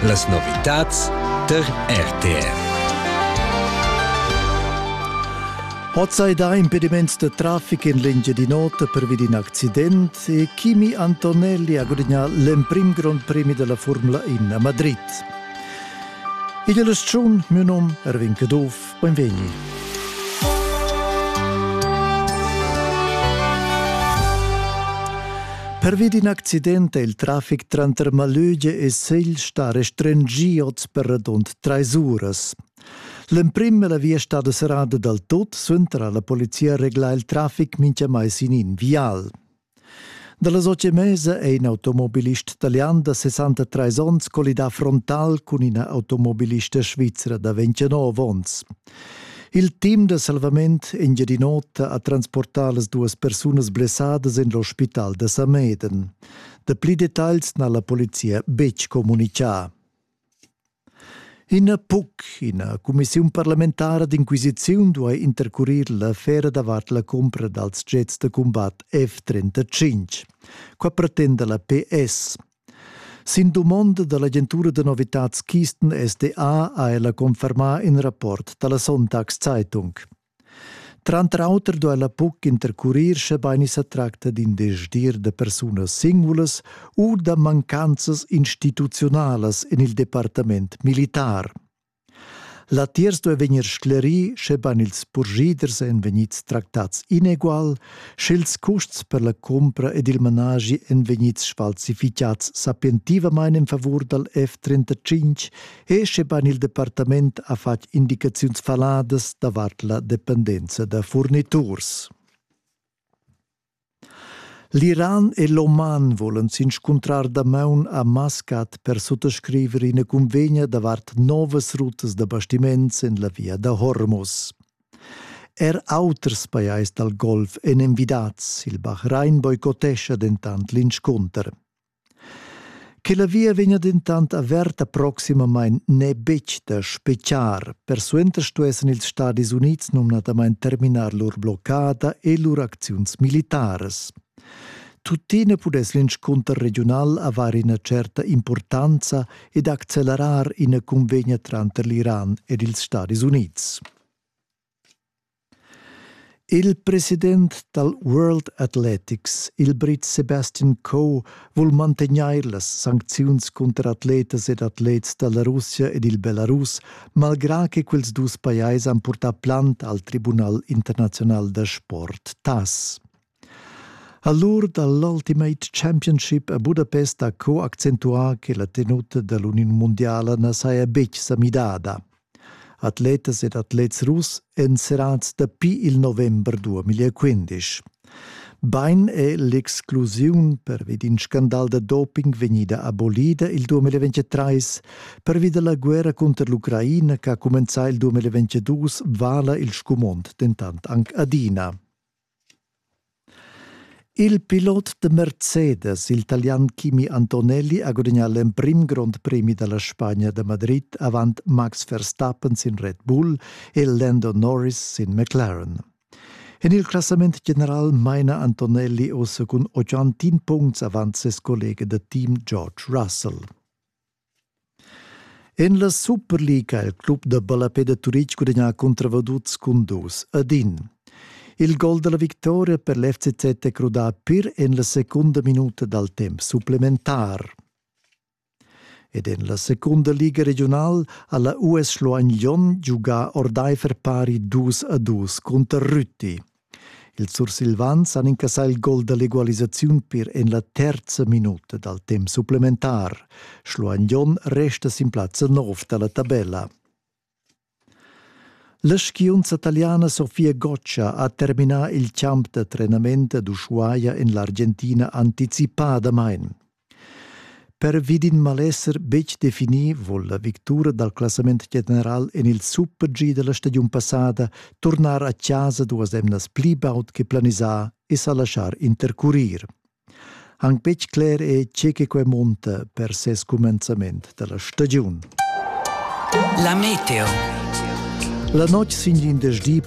Las novitads tar RTR. Hoz hai dà impediments da trafic in l'Engiadin'Ota pervi d'in accident e Kimi Antonelli ha gudagnà l'emprim Grand Premi della Formula 1 a Madrid. Igl aschun, miu num Erwin Caduff, Beinvegni. Pervi d'in accident è il traffic tranter Malöge e Segl stà restringì oz per radund trais uras. L'emprim è la via stada serrada dal tot, suenter ha la polizia reglà il traffic mintgamai sin in vial. Dalla socia Mesa è in automobilist talian da 63 onns collidà frontal cun ina automobilista svizra da 29 onns. Il team da salvament Engiadin'Ota ha transportà las duas persunas blessadas en l'ospital da Sameden. Dapli detagls n'ha la polizia betg communicà. Ina PUC, ina cumissiun parlamentara d'inquisiziun duai intercurir l'affera davart la cumpra dals jets da cumbat F-35. Qua pretenda la PS. Sin dumonda da l'agentura da novitads Keystone SDA ha ella confermà in rapport da la Sonntagszeitung. Tranter auter duella buc intercurir schebein i sa tracta d'in desdir da persunas singulas u da mancanzas instituziunalas en il departament militar. Latiers duei vegnir sclerì, schebein ils purschiders ein vegnids tractats inegual, sch'ils custs per la cumpra ed il managi ein vegnids sfalsificads sapientivamein en favur dal F-35 e scheban il departament ha fatg indicaziuns faladas davart la dependenza da furniturs. L'Iran e l'Oman volan s'inscuntrar damaun a Mascat per suttascriver ina cunvegna davart novas rutas da bastiments en la via da Hormuz. Er auters pajais dal Golf èn envidads, il Bahrain boicotescha dentant l'inscunter. Che la via vegna dentant averta proximamain n'è betg da spetgar. Persuenter stuessan ils Stadis Unids numnadamain terminar lur bloccada e lur acziuns militaras. Tuttina pudess l'inscunter regiunal avair ina certa impurtanza ed accelerar ina cunvegna tranter l'Iran ed ils Stadis Unids. Il president dal World Athletics, il Brit Sebastian Coe, vul mantegnair las sancziuns cunter atletas ed atlets da la Russia ed il Belarus, malgrà che quels dus pajais han purtà plant al Tribunal internaziunal da sport, TAS. A l'ur da l'Ultimate Championship a Budapest ha co accentuà che la tenuta da l'Uniun mundiala na saja betg sa midada. Atletas ed atlets russ èn serrads dapi il november 2015. Bain è l'exclusiun pervi d'in scandal da doping vegnida abolida il 2023. Pervi da la guerra cunter l'Ucraina che ha cumenzà il 2022 vala il scumond dentant anc adina. Il pilot da Mercedes, il talian Kimi Antonelli, ha gudagnà l'emprim grond premi da la Spagna da Madrid avant Max Verstappen sin Red Bull e Lando Norris sin McLaren. En il classament general maina Antonelli oz cun 81 puncts avant ses collega da team George Russell. En la Superliga ha il club da ballapè da Turitg gudagnà cunter Vaduz cun dus ad in. Il gol da la victoria per l'FCZ è crudà pir en la secunda minuta dal temp supplementar. Ed en la secunda liga regional ha la US Schluein Jon giugà ordaifer pari dus a dus cunter Rütti. Ils sursilvans han incassà il gol da l'egualisaziun per en la terza minuta dal temp supplementar. Schluan Jon resta sin plazza 9 da la tabella. La skiunza taliana Sofia Goccia ha terminà il champ da trenament ad Ushuaia en l'Argentina anticipadamain. Pervi d'in malesser betg definì vul la victura dal classament general en il super-G da la stagiun passada turnar a chasa duas emnas pli baud che planisà e sa laschar intercurir. Anc betg cler è tge che quai monta per ses cumenzament da la stagiun. La meteo. La notg sin l'indesch di